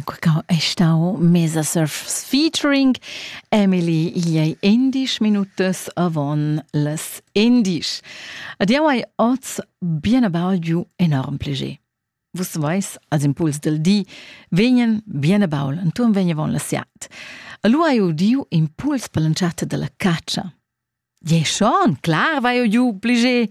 Quicau è stau mesa surf featuring Emily iei endisch minutas avon les endisch. Ad jau hai oz bien abalgiu enorm plege. Vus veis, als impuls del di, vegnen bien abaul, antum vegn avon la siat. Allu hai udiu impuls per l'entschatta della caccia. Je schon, clar vai eu giu plege.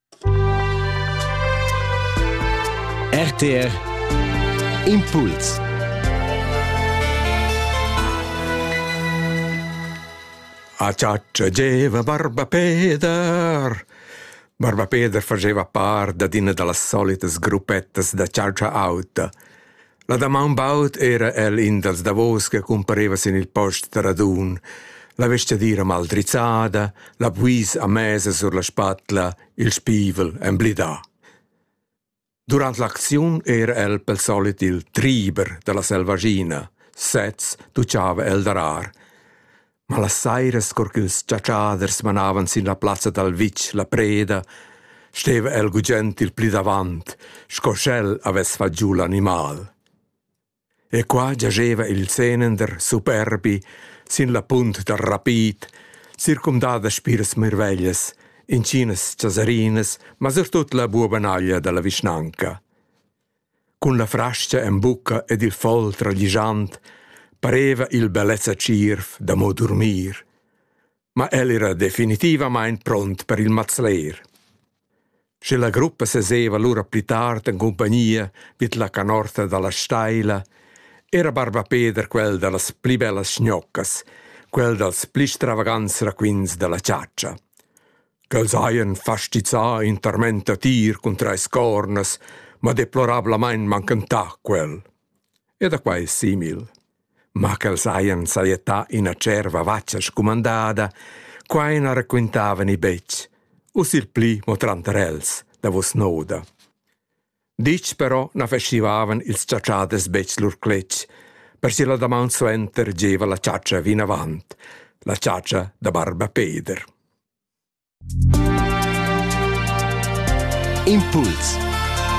RTR Impuls Acciacciageva Barba Peder Barba Peder faceva part d'ina da las solitas gruppettas da chatscha auta. La damaun baud era el in dals davos che cumpareva sin il post da radun, la vestgadira mal drizzada, la buis a mesa sur la spatla, il spivel emblidà. Durant l'acziun era el pel solit il triber da la selvaschina, sez tuccava el darar. Ma las sairas, cur ch'ils chatschaders manavan sin la plazza dal vitg la preda, steva el gugent il pli davant, sco sch'el havess fat giu l'animal. E qua giascheva il senender superbi sin la punt dal rapid, circumdà da spiras mirveglias, inschinas chasarinas, ma surtut la buobanaglia da la vischnanca. Cun la frastga en bucca ed il fol traglischant pareva il bellezza tschierv da mo durmir. Ma el era definitivamain pront per il mazler. Sche la gruppa seseva lura pli tard en cumpagnia vid la canorta dalla steila, era barba Peder quel dallas pli bellas schnoccas, quel dals pli stravagants raquints dalla chatscha. ch'els hajan fastizzà in tarmenta tir cun trais cornas, ma deplorablamain manchentà quel. E da quai simil. Ma ch'els hajan sajettà ina cerva vatga scumandada, quai na raquintavani betg, u sil pli mo tranter els, davos noda. Ditg però na festivavan ils chatschaders betg lur cletg. Per si la damaun suenter gieva la chatscha vinavant, la chatscha da barba Peder. Impuls